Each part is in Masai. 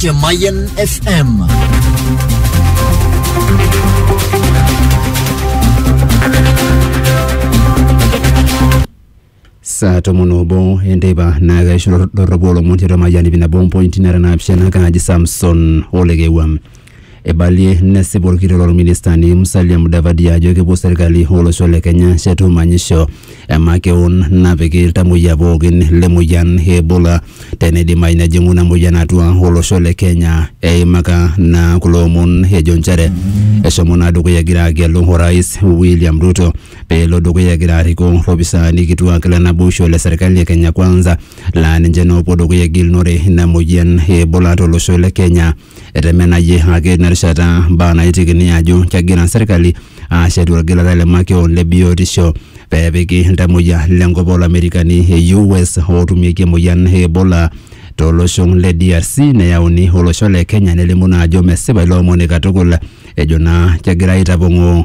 Ke Mayan FM. saa tomon obo enteipa naa kaisho doropo olomon tiatua mayian ip nabo mpointi nara naapishana kaaji samson olekewua Eibalie nesip olkitok lolministani Musalia Mudavadi ajo kepuo serkali olosho le Kenya ashetu manyisho emakeon napiki iltamoyia pookin le moyian e Ebola teneidimayu nejing'u ina moyian atua olosho le Kenya. Eimaka naa kulo omon ejo nchere eshomo naa dukuya egira agelu orais William Ruto pee elo dukuya egira arikoo lopisaani kituak le naboisho le serkali e Kenya Kwanza laa ninche naa opuo dukuya egilunore ina moyian e Ebola to losho le Kenya. Etemenayie ake ina rishata mbaa naitekini ajo kegira serkali aashetu olgilata le makeon le biotisho pee epiki iltamoyia le nkop oo Lamerikani e US ootumieki emoyian e Ebola to losho le DRC neyauni olosho le Kenya nelimu naa ajo mesipa ilo omoni katukul ejo naa kegirai aitapong'oo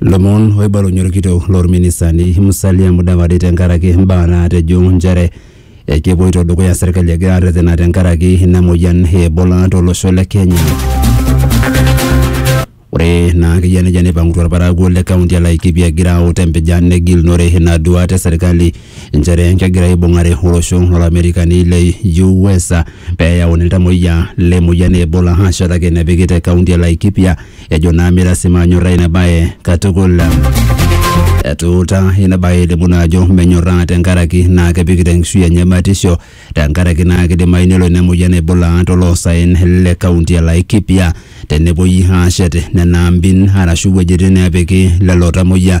Lomon oibalunye orkitok lorministani Musalia Mudavadi tenkaraki imbaa naatejo nchere ekepoito dukuya serkali egira arretena tenkaraki ina moyian e Ebola tolosho le Kenya. Ore naa akeyia nejia neipang'utua irparakuo le kaunti e Laikipia egira aut empijan negilunore ina duaata e serkali nchere kegira aibung'are olosho lolamerikani le US pee eyauni iltamuoyia le moyian e Ebola aashetaki enepiki te kaunti e Laikipia Ejo naa mira si manyorraa ina bae katukul. Etuuta ina bae elimu naa ajo menyorraa tenkaraki naa kepikita enkishui enye batisho tenkaraki naa kidimayu nelo ina moyian aibulaa toloosaen le kaunti e Laikipia tenepuoi aashet nena ambin arashu wuejitin neepiki lelo tamoyia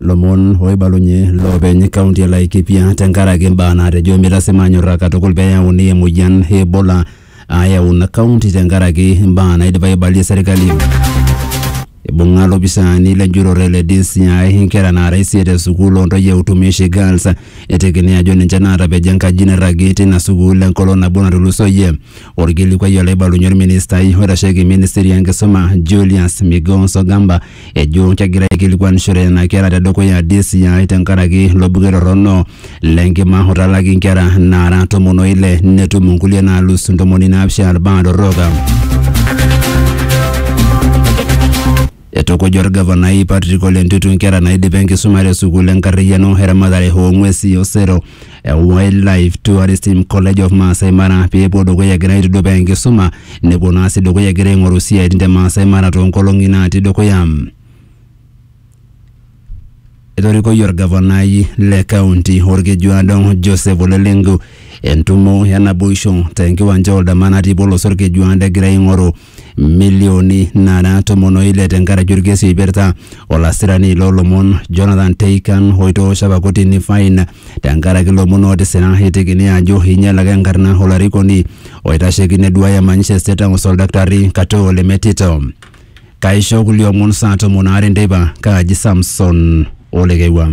lomon oibalunye loopeny kaunti e Laikipia tenkaraki imbaa naatejo mitasima anyorraa katukul pee eyauni emoyian e Ebola ayau ina kaunti tenkaraki imbaa naidipa aibalie serkali. Ibung'a lopisaani lenjurore le DCI inkera naara isiet e sukuul ontoyie e Utumishi Girls etekini ajo ninche naatapejo enkaji nairragi tina sukuul enkolong nabo natulusoyie. Orkilikuai olaibalunye orministai oitasheki ministry enkisuma Julius Migos Ogamba ejo kegira aikilikuanishore nena kera tedukuya DCI tenkaraki ilo buket torrono le nkima otalaki nkera naara tomon o ile netum nkulie naalus ntomoni naapishana ilbaa torrok. Eitukuja olgavanai Patrick Ole Ntutu nkera naidipa enkisuma te sukuul enkarriyiano eramatare oo ng'wesi osero Wildlife Tourism College of Maasai Mara pee epuo dukuya egira aitudupaa enkisuma nepuo naa sii dukuya egira aing'oru isiaitin te Maasai Mara toonkolong'i naatii dukuya. Etorikoyie orgavanai le kaunti Olkejuado Joseph Ole Lenku entumo e naboisho tenkiwanja Oldama natii Bolos Olkejuado egira aing'oru milioni nara tomon o ile tenkaraki orkesi oipirta olasirani loolomon Jonathan Teikan oitoosho apa kotini fain tenkaraki ilomon ootisira eitekini ajo einyalaka enkarna olarikoni oitasheki neduaya manyisho e State House Oldaktarri Katoo Lemetito. Kaisho kulie omon saa tomon aare enteipa, kaaji Samson Olekewua.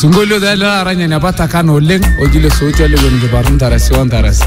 sinkolio taa ele taata ninye apa takana oleng oji le souti olewueni kiparru ntarasi o ntarasi